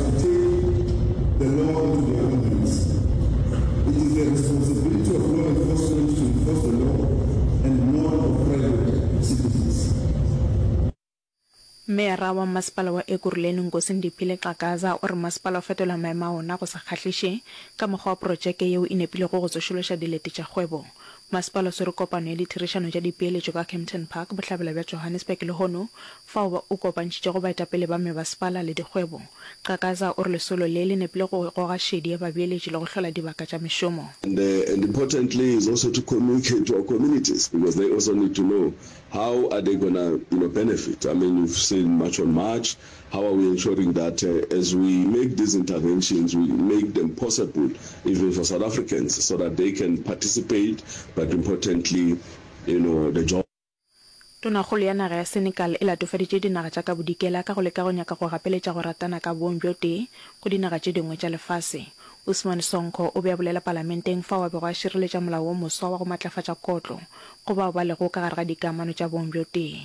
To take the law into their own hands. It is the responsibility of law enforcement to enforce the law and not of private citizens. Meyara wa Mmasepala wa Ekurhuleni Nkosi Ndiphile Xhakaza o re masepala o fetola maemo a ona go sa kgahliše ka mokgwa wa porotšeke yeo e nepilego go tsošološa dilete tša kgwebo Masepala o swere kopano ya ditherišano tša dipeeletšo ka Kempton Park, bohlabela bja Johannesburg lehono, fao ba o kopantšhitšego baetapele ba mebaspala le dikgwebo. Qhakaza o re lesolo le le nepile go goga šedi ya babeeletši le go hlola dibaka tša mešomo. And and importantly is also to communicate to our communities because they also need to know how are they gonna you know benefit, I mean you've seen March on March, How are we ensuring that as we make these interventions we make them possible even for South Africans so that they can participate but importantly you know the job. Tonakgolo ya naga ya Senegal e latofaditše dinaga tša ka bodikela ka go leka go nyaka go gapeletša go ratana ka bong bjo tee go dinaga tše dingwe tša lefase. Ousmane Sonko o be a bolela palamenteng fao a bego a šireletša molao wo moswa wa go matlafatša kotlo go bao ba lego ka gare ga dikamano tša bong bjo tee.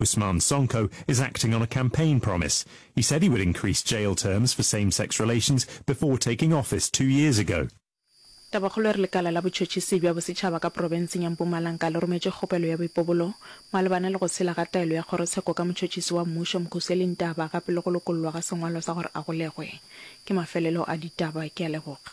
Ousmane Sonko is acting on a campaign promise. He said he would increase jail terms for same-sex relations before taking office two years ago. Tabakgolo e re lekala la botšhotšhisi bja bosetšhaba ka profenseng ya Mpumalanga le rometše kgopelo ya boipobolo malebana le go sela ga taelo ya kgorotsheko ka motšhotšhisi wa mmušo Mkhuseli Ntaba gape le go lokollwa ga sengwalo sa gore a golegwe. Ke mafelelo a ditaba. Ke a leboga.